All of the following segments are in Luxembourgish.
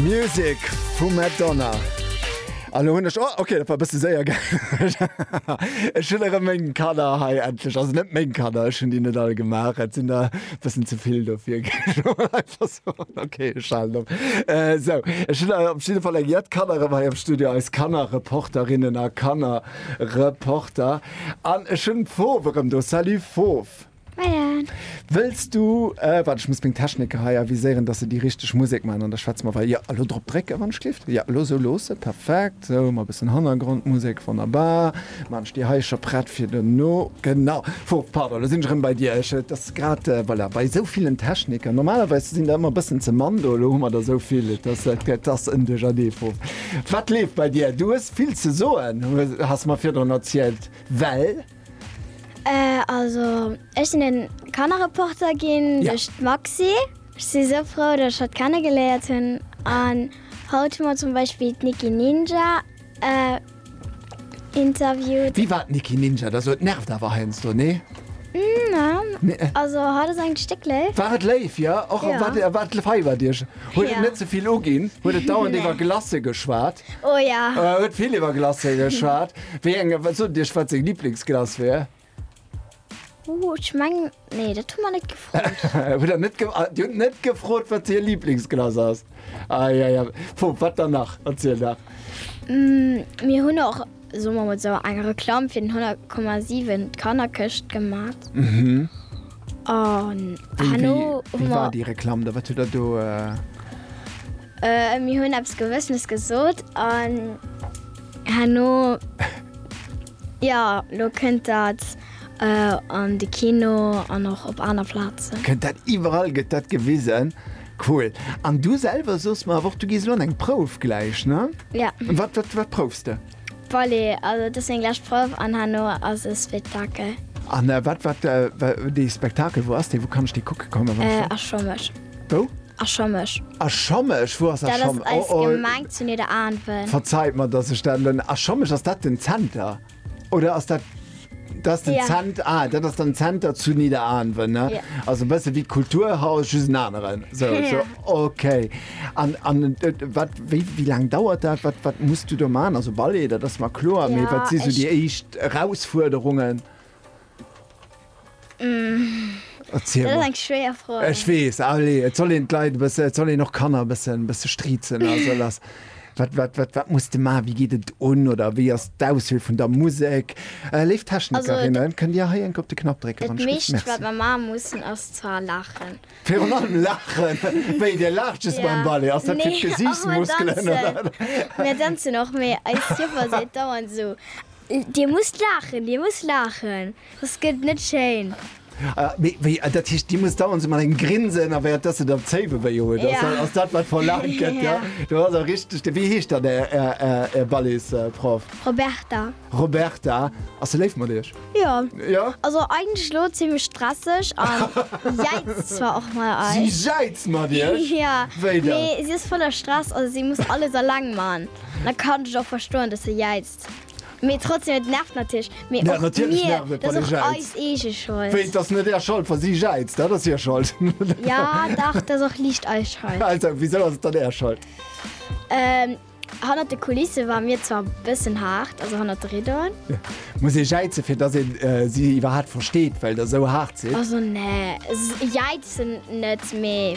Music vu Madonna. An hunn ech oh, okay, dat war bësse séier ge Ech hunn erëm meng Kader hei endlech ass net meng Kader, ech hunn déi net all gemaach. Et sinn der bëssen ze vill dofir okay, ech halen op. Äh, sou, ech hunn op jidde Fall eng jett Kanner erëm hei am Studio, eis Kannerreporterinnen a Kannerreporter. An ech hunn d'Fofw erëm do. Salut Fofw! Moien. Wëlls du, waart ech muss meng Techniker hei aviséieren, dass se déi richteg Musek maachen an da schwätze mer wei, jo, elo drop drécken, wann ech gleeft, jo, elo esou loossen, perfekt, esou, mat e bëssen Hannergrondmusek, wonnerbar, maan ech déi hei scho prett fir dono, genau, fu, pardon, elo sinn ech erëm bei dir, ech, et ass grad, voilà, bei esou villen Techniker, normalerweis sinn der ëmmer e bëssen ze mann do, elo hu mer der esou vill, et ass, et ass en Duerchernee vu, wat leeft bei dir? Du hues vill ze soen, hues, has mer virdrun erzielt, well. Also ech sinn en Kannerreporter ginn duerch d'Maxi. Ech si sou frou dat ech hatt kenne geléiert hunn an haut hu mer zum Beispill d'Nicki Ninja interviewt. Wie war d'Nicki Ninja? Da sot, nervt awer heiansdo, nee? Neen, also hatt ass eigentlech déck léif. War et léif, jo? Och wat feiert Iech Huet et net ze vill uginn, huet et dauernd iwwer Glacé geschwat, huet vill iwwer Glacé geschwat. Wéi eng, wat sot Iech, wat seng Liblingsglace wär? Ech meng, nee, dat hu mer net gefrot. Hutt Der net gefrot? Dir hutt net gefrot, wat hir Liblingsglace ass? Ai, ai, ai. Bon, wat dann nach? Erzielt nach. Mir hunn och. soe mer mol sou, eng Reklamm fir den 100,7 d'Kannerkëscht gemat an herno hu mer. Wéi war déi Reklamm da? Wat hutt Der do. Mir hunn eppes Gewëssenes gesot an herno, jo, elo kënnt dat an de Kino an och op aner Plazen. Kënnt dat iwwerall, gëtt dat gewisen. Cool. An du selwer soss mer awer och, du gees elo an eng Prouf gläich, ne? Ja. Wat, wat, wat proufs de? Ballet. Also et ass meng lescht Prouf an herno ass e Spectakel. An wat, wat, wa, dee Spectakel, wou ass dee? Wou kann ech dee kucke kommen, wann ech. Äh, a Schommesch. Wou? A Schommesch. A Schommesch? Wou ass a Schommesch? Dat ass eis Gemeng zu Nidderaanwen. Verzeit mer, dass ech dat elo. A Schommesch, ass dat den Zenter? Oder ass dat das den ja. Zent, ah, dat ass den Zenter zu Niederanwen ne? Ja. Also bësse wie Kulturhaus just en aneren. So, ja. so, okay. An, an äh, wat, wie, wie lang dauert dat? Wat, wat musst du do man? Also Ballet, dat ass mal klo, ja, wat si so die echt Herausforderungen? Ech weess, allez, et soll een d'Leit e bësse, et soll een och d'Kanner e bëssen, bësse striezen a sou lass. Wat, wat, wat, wat muss de man? Wéi geet et un oder wéi ass d'Auswiel vun der Musek? Léif Technikerinnen, kënnt Dir hei enk op de Knapp drécken, wann ech ginn? Dat meescht, wat mer maache mussen, ass zwar laachen. Virun allem laachen? Wéi, Dir laacht just beim Ballet? Ass dat fir d'Gesiichtsmuskelen oder? Nee, och mer danzen. Mir danzen och, mee eis Joffer seet dauernd esou. Dir musst laachen, Dir musst laachen, soss gëtt et net schéin. Mee wéi, dat heescht, Dir musst dauernd esou mat engem Grinsen a wäert, dass se dann Zéiwe wéi huet? Ass dat, ass dat wat verlaangt gëtt? Jo, do ass e richteg Ding. Wéi heescht dann Är, Är, Är Ballet's-Proff? Roberta. Roberta, ass se léif mat Iech? Jo. Jo? Also eigentlech elo zimmlech stresseg a jäizt zwar och mat eis. Si jäizt mat Iech? Jo. Wéi da? Mee si ass voller Stress, also si muss alles alleng man. Da kann ech och verstoen, dass se jäizt. Mee trotzdem, et nervt natierlech. Mee och mir, dat ass och eis eege Schold. Wéi, et ass net är Schold, wa si jäizt? Dat ass hir Schold. Jo, dach, dat ass och liicht eis Schold. Also, wisou ass et dann är Schold? Hannert de Kulisse ware mir zwar e bëssen haart, also hannert de Riddoen. Muss ee jäizen, fir dass een si iwwerhaapt versteet, well der esou haart sidd? Also, nee, jäizen net, mee.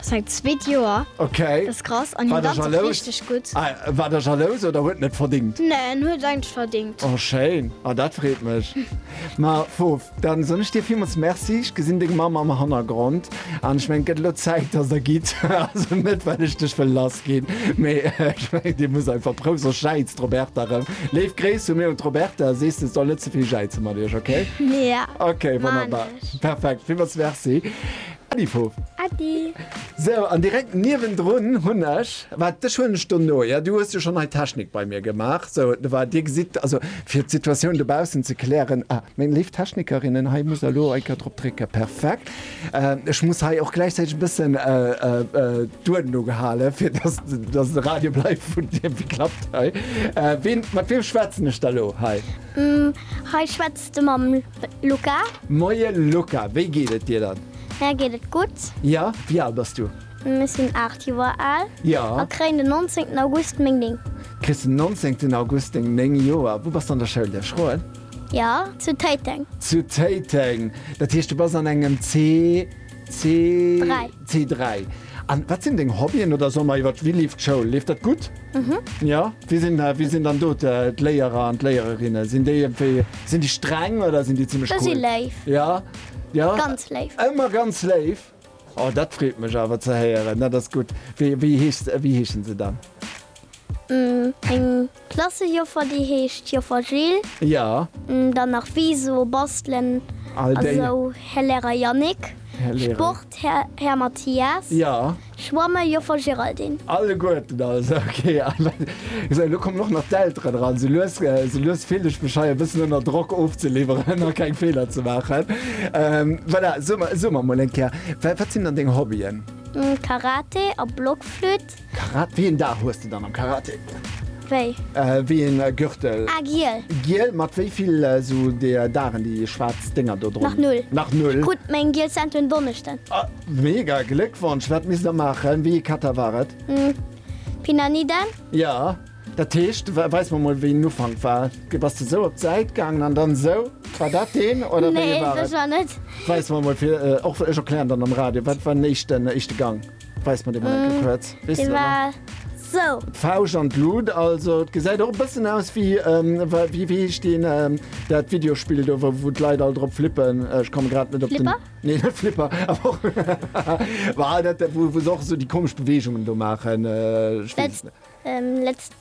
Seit zweet Joer. Ok, war der jalous? War der jalous oder huet en et verdingt? Nee, en huet et eigentlech verdingt. Oh schéin, ah dat freet mech. Ma Fofo, dann soen ech dir villmools Merci. Ech gesinn deng Mamm am Hannergrond an ech mengen et gëtt elo Zäit dass der gitt. Also net well ech dech wëll lass ginn, mee ech mengen dir musst einfach prou soss jäizt d'Roberta erëm. Léif Gréiss vu mir un d'Roberta, sees se soll net ze vill jäize mat iech, ok? Jo, maan ech. Ok, wonnerbar, perfekt, villmools Merci. Äddi Fo. Äddi. Sou, an direkt niewendrun hunn ech, wat, dech huelen ech dono, jo, du hues jo schonn hei d'Technik bei mir gemaach, sou, de war, dir gesitt, also fir d'Situatioun dobaussen ze klären, ah, meng léif Technikerinnen, hei muss der elo eng Kéier drop drécken, perfekt, ech muss hei och gläichzäiteg e bëssen d'Uerden ugehalen, fir dass, dass et e Radio bleift, vun deem, wéi klappt hei, ween, mat weem schwätzen ech da elo hei? Hei schwätzt. De mam Luca. Moien Luca, wéi geet et dir dann? Mär geet et gutt. Ja, wéi al bass du? Ech sinn 8 Joer al. Ja. A kréien den 19 August meng 9. Kriss den 19 August deng 9 Joer. Wou bass de an der Schoul? Lech froen? Ja, zu Téiteng. Zu Téiteng, dat heescht du bass an engem C? C3. An wat sinn deng Hobbyen oder soll mer iwwer wéi leeft d'Schoul? Leeft dat gutt? Jo? Wie sinn, wie sinn dann do d'Léierer an d'Léiererinne? Sinn déi iergendwéi, sinn déi streng oder sinn déi zimmlech cool? Déi si léif. Jo? Jo? Ganz léif. Ëmmer ganz léif? Oh, dat freet mech awer ze héieren. Dat ass gutt. Wéi, wéi heescht, wéi heeschen se dann? Eng. Klassejoffer déi heescht Joffer Jill. Jo. Dann nach Viso, Bastelen a sou Här Lehrer Yannick. Sport Här Mathias. Jo. Schwamme Joffer Géraldine. Alleguerten also, ok. Esou elo kommen och nach d'Elteren eran. Sou lues, sou lues fillt ech mech hei e bëssen ënner Drock ofzeliwweren a keng Feeler ze maachen. Voilà, soe mer, soe mer emol eng Kéier, wat sinn dann deng Hobbyen? Karate a Blockflütt. Karate, wéi een Dag hues de dann am Karate? Wéi? Wéi een Gürtel? Ah giel. Giel, mat wéi vill sou deer Dagen déi schwaarz Dénger do dron? Nach null. Nach null? Ech krut meng giel Ceinture en Donneschden. Ah mega, Gléckwonsch! Wat misst der maachen? Wéi ee Kata war et? Pinaniden. Ja, dat heescht, weis mer mol wéi en Ufank war. Du bass du sou op d'Säit gaangen an dann sou. War dat deen oder wéi ee war et? Nee, sech war net. Weis mer mol fir, och ech erklären dann am Radio, wat war den éischten, éischte Gang? Weis mer dee mol enke kuerz. Weess de dat nach? Sou. D'Fauscht an d'Lut, also et gesäit och e bëssen aus wéi, wéi heescht deen, dat Videospill do, wou d'Leit all drop flippen? Ech komme grad net op den. Flipper? Nee, net Flipper, awer och. Bah, dat, wou se och esou déi komesch Beweegungen do maachen. Ech weess et net. Let's.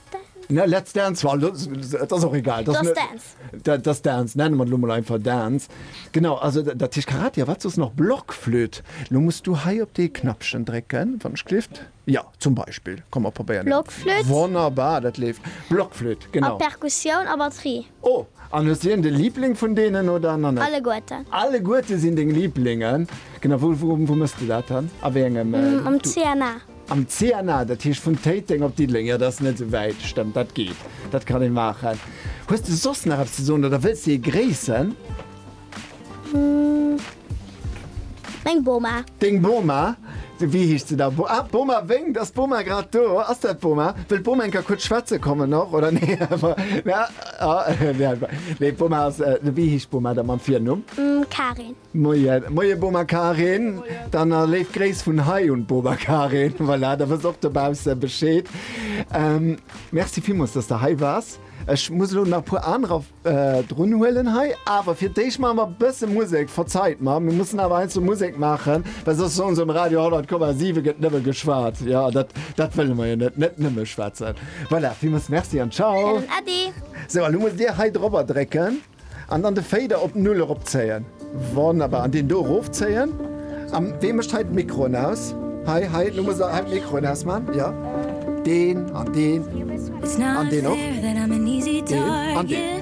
Ne, Let's Dance war lo, et ass och egal. Just Net- Dance. Da- Just Dance, nennen mer et elo mol einfach Dance. Genau, also da- dat heescht Karate, a wat soss nach? Blockflöt. Lo muss du hei op dee Knappchen drécken, wann ech gelift. Ja, zum Beispill. Komm, mer probéieren dat. Blockflöt. Wonnerbar, dat leeft. Blockflöt, A genau. Perkussioun a Batterie. Oh, an hues du iergendee Liibling vun deenen oder nach net? Alleguerten. Alleguerte sinn deng Liiblingen. Genau, wou, wou, wou mëss de dat dann? A wéi engem, äh, Am du? CNA. Am CNA, dat heescht vun Téiteng op Diddeleng. Jo, dat ass net esou wäit, stëmmt, dat geet, dat kann ee maachen. Hues de soss nach eppes ze soen oder wëlls de ee gréissen? Meng Boma. Deng Boma? Wéi heescht se da? Ah, d'Boma wénkt. Ass d'Boma grad do? Ass dat d'Boma? Wëll d'Boma eng Kéier kuerz schwätze kommen och, oder? Nee, nee, d'Boma ass, wéi heescht d'Boma da mam Virnumm? Karin. Moien. Moien, Boma Karin. Moien. Dann a léif Gréiss vun hei un d'Boma Karin. Voilà, da wëss och dobausse Bescheed. Merci villmools, dass de hei waars. Ech muss elo nach e puer anerer. drun huelen hei, awer fir d'éischt maache mer e bësse Musek. Verzeit mer, mir mussen awer heiansdo Musek maachen, well soss soen se um Radio 100,7 gëtt nëmme geschwat. Jo, dat, dat wëlle mer jo net, net nëmme schwätzen. Voilà, villmools Merci an Ciao. Helen Eddy. Sou, a lo musst Dir hei drop erdrécken an dann de Fader op Null eropzéien. Wonnerbar, an deen do erof zéien. An wee mécht hei d'Mikroen aus? Hei, hei, lo muss der hei d'Mikroen ausman, jo. Deen an deen an deen och. Deen an deen.